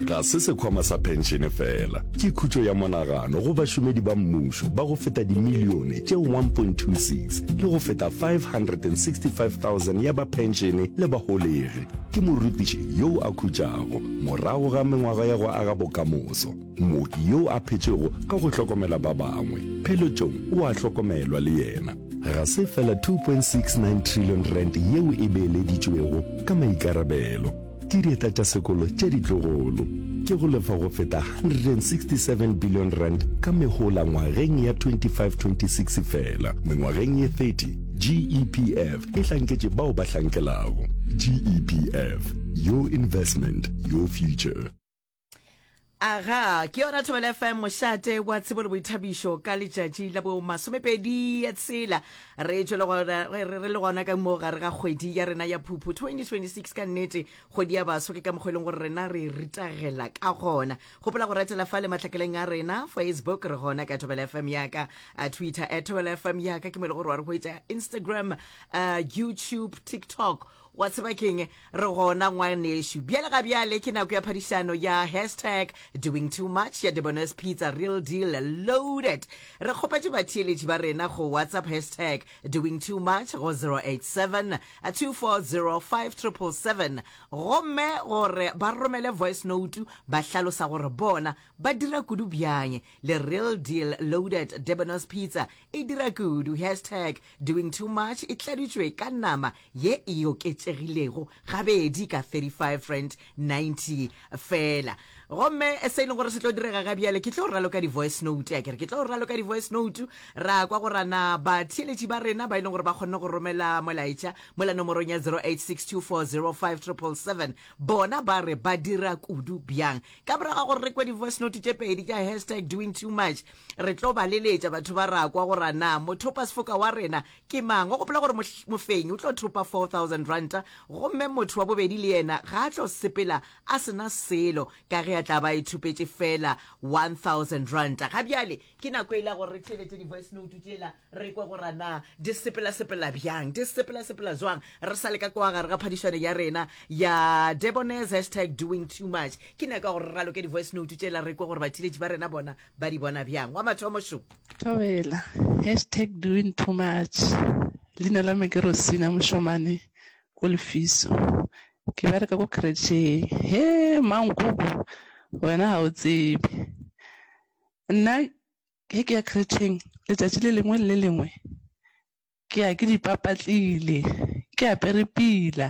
Ga se sekhwama sa phenšene fela, ke khutšo ya monagano go bašomedi ba mmušo ba go feta dimilione tše 1.26 le go feta 565,000 ya ba phenšene le baholegi. Ke morutiši yo a khutšago morago ga mengwaga ya go aga bokamoso, mooki yo a phetšego ka go hlokomela ba bangwe, pheletšong o a hlokomelwa le yena. Ga se fela R2.69 trillion yeo e beeleditšwego ka maikarabelo, Dieta tša sekolo tše ditlogolo ke go lefa go feta R167 billion ka mehola ngwageng ya 25-26 fela. Mengwageng ye 30, GEPF e hlanketše bao ba hlankelago. GEPF, Your Investment, Your Future. aga ke yona thobela fm mošate wa tsebo le boithabišo ka letšatši la bo masomepedi ya tshela re tšwe le gona- re re- re le gona ka moo gare ga kgwedi ya rena ya phuphu 2026 ka nnete kgwedi ya baso ke ka mokgwa e leng gore rena re ritagela ka gona gopola go ratela fa le mahlakeleng a rena facebook re gona ka thobela fm yaka a twitter at thobela fm yaka ke mo e le gore wa re hwetša instagram uh, youtube tiktok Wa tseba keng? Re gona ngwanešu. Bjale ga bjale ke nako ya phadišano ya hashtag Doing Too Much ya Debonair's Pizza Real Deal Loaded. Re kgopetše batheeletši ba rena go WhatsApp hashtag Doing Too Much go 0872405777 gomme gore ba romele voice note ba hlalosa gore bona ba dira kudu bjang le Real Deal Loaded Debonair's Pizza E dira kudu, hashtag doing too much e tladitšwe ka nama ye e oketšegilego gabedi ka R35.90 fela. Gomme se e leng gore se tlo direga ga bjale, ke tlo raloka di-voice note, a ke re ke tlo raloka di-voice note, ra kwa go rana batheeletši ba rena ba e leng gore ba kgonne go romela molaetša mola nomorong ya 0862405777, bona ba re ba dira kudu bjang. Ka morago ga gore re kwe di-voice note tše pedi tša hashtag doing too much, Re tlo ba leletša batho ba rakwa gore a na mothopasefoka wa rena ke mang. O gopola gore mofenyi o tlo thopa 4000 ranta gomme motho wa bobedi le yena ga a tlo sepela a se na selo ka ge a tla ba a ithopetše feela 1000 ranta. Ga bjale ke nako yela gore re theeletše di-voice note tšela re kwe gore a na di sepelasepela bjang, di sepelasepela zwang re sa le ka kwa gare ga phadišano ya rena ya Debonairs hashtag doing too much. Ke nako ya gore re raloke di-voice note tšela re kwe gore batheeletši ba rena bona ba di bona bjang? Wa mathomo šo. Thobela, hashtag doing too much. Leina la me ke Rosina Mošomane ko Lefiso. Ke bereka ko kretšheng. He, mankoko, wena ga o tsebe. Nna ge ke ya kretšheng letšatši le lengwe le le lengwe ke ya ke dipapatlile ke apere pila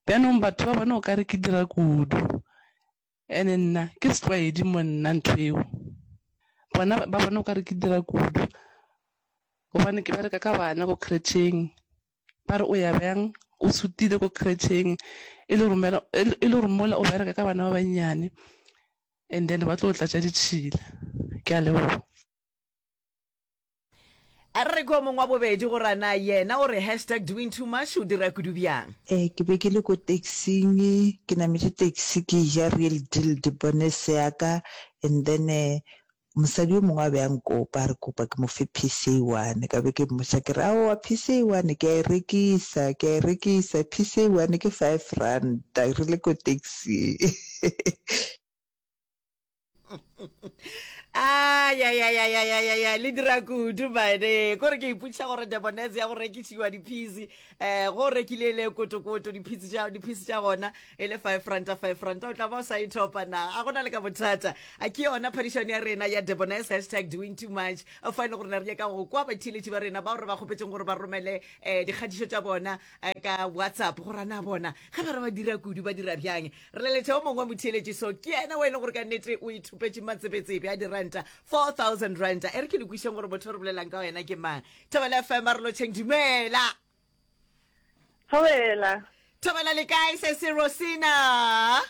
bjanong batho ba bona o ka re ke dira kudu Ene nna ke setlwaedi mo nna ntho eo. Bona ba bona o ka re ke dira kudu gobane ke bereka ka bana ko kretšheng. Ba re o ya byang o sutile ko kretšheng e le romela e le gore mola o bereka ka bana ba bannyane and then ba tlo tlatša ditšhila. Ke a leboga. A re re kwe o mongwe wa bobedi gore a na yena o re hashtag doing too much o dira kudu bjang. E, ke be ke le ko taxing, ke nametše taxi ke eja Real Deal Debonnaise ya ka and then mosadi yo mongwe a be a nkopa a re kopa ke mo fe piece e one. Ka be ke mmotša ke re, aowa piece e one ke a e rekisa, ke a e rekisa, piece e one ke five ranta re le ko taxing. ayayayayayaya le dira kudu bane kore ke iputša gore debonese ya go rekišiwa diphisi um go rekile le kotokoto diphisi tša gona e le five ranta five ranta o tla ba o sa ithopa na a gona le ka bothata a ke yona phadišano ya rena ya debonese hashtag doing too much fa e le gore ne re nyaka go kwa batheeletši ba rena bao re ba kgopetseng gore ba romele um dikgatišo tša bona ka WhatsApp go rana bona ge ba re ba dira kudu ba dira bjang re leletša o mongwe wa motheeletši so ke yena o e le gore ka nnete o ithopetše matsebetsebe a diranta 4000 ranta e re ke lekwišeng gore motho re bolelang ka wena ke mang thobela fm a re lotšheng dumela thobela thobela le kae se se rosina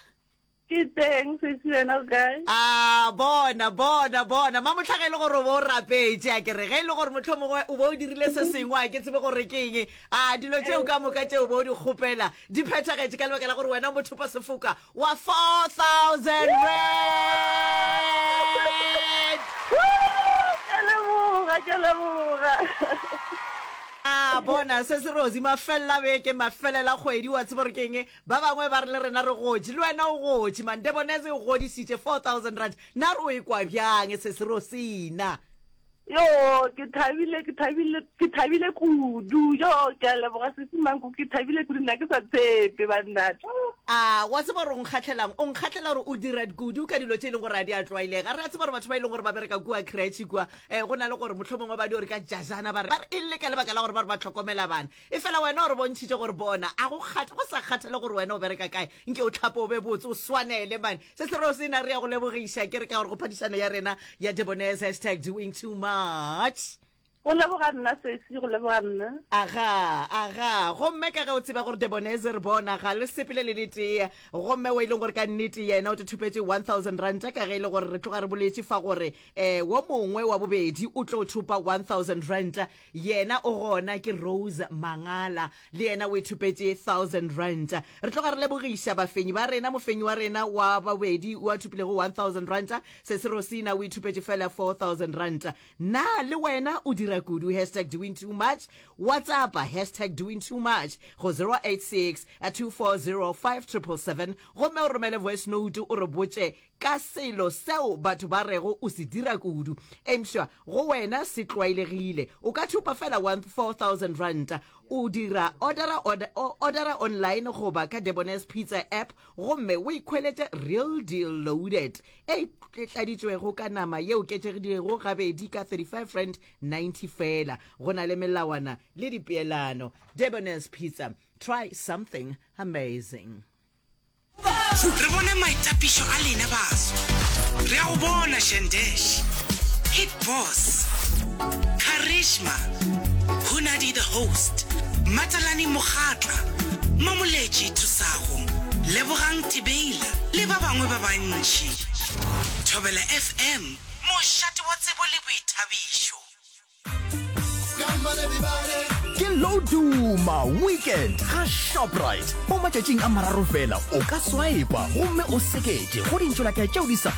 Ke teng sesi wena o kae? A bona bona bona mamotlha ge e le gore o bo o rapetše a kere ge e le gore motlho mongwe o bo o dirile se sengwe a ke tsebe gore ke eng a dilo tšeo ka moka tšeo bo o di kgopela di phethagetše ka lebaka la gore wena mothopa sefoka wa 4000 rand Ke leboga ke leboga. a bona se se rosi mafelela beke mafelela kgwedi wa tseba gore ke eng Ba bangwe ba re le rena re gotši, le wena o gotši. Mandebonese o godišitše 4000 rand. Na re o e kwa bjang, Sesi Rosina? Yoo, ke thabile, ke thabile, ke thabile kudu. Yoo, ke a leboga, Sesi Manku, ke thabile kudu, nna ke sa tshepe, banna. A wa tseba gore o nkgahlelang? O nkgahlela gore o dira kudu ka dilo tše e leng gore a di a tlwaelega. Re a tseba gore batho ba e leng gore ba bereka kua kretšhe kua, um go na le gore mohlomongwe ba di gore ka jajana, ba re e le ka lebaka la gore ba re ba tlhokomela bana. Efela wena o re bontšhitše gore bona, a go kgatha, go sa kgathale gore wena o bereka kae, nke o hlape o be botse, o swanele, mane. Se se reo sena, re ya go lebogiša, ke re, ka gore go phadišano ya rena ya Debonairs, hashtag doing too much. Go leboga nna, sesi, go leboga nna. Aga, aga. Gomme ka ge o tseba gore Debonairs e re bona, ga le sepele le le tee. Gomme wo e leng gore ka nnete yena o te thopetše 1000 ranta, ka ge e le gore re tloga re boletše fa gore, eh, wo mongwe wa bobedi o tlo thopa 1000 ranta. Yena o gona ke Rose Mangala, le yena o ithopetše thousand rand. Re tloga re lebogiša bafenyi ba rena. Mofenyi wa rena wa bobedi o a thopilego one thousand rand. Sesi Rosina o ithopetše fela four thousand rand. Na le wena o dira kudu? Hashtag doing too much. WhatsAppa hashtag doing too much go zero eight six two four zero five triple seven gomme o romele voice note o re botše ka selo seo batho ba rego o se dira kudu, eupša go wena se tlwaelegile. O ka thupa fela wa 4000 ranta, o dira odara, order, o odara online goba ka Debonairs Pizza app gomme o ikhweletše Real Deal Loaded e tladitšwego ka nama ye oketšegilego gabedi ka R35.90 feela. Go na le melawana le dipeelano. Debonairs Pizza, try something amazing. Re bone maitapišo a lena baso. Re a go bona Shandesh, Hit Boss, Karishma, Hunadi the Host, Matalani Mokgatla, Mamoletši Thusago, Lebogang Tibeila le ba bangwe ba bantši. Thobela FM, mošate wa tsebo le boithabišo. ke loduma weekend ga shoprite mo matšatšing a mararo fela o ka swipa gomme o sekete go dintšolakea tšeo di sa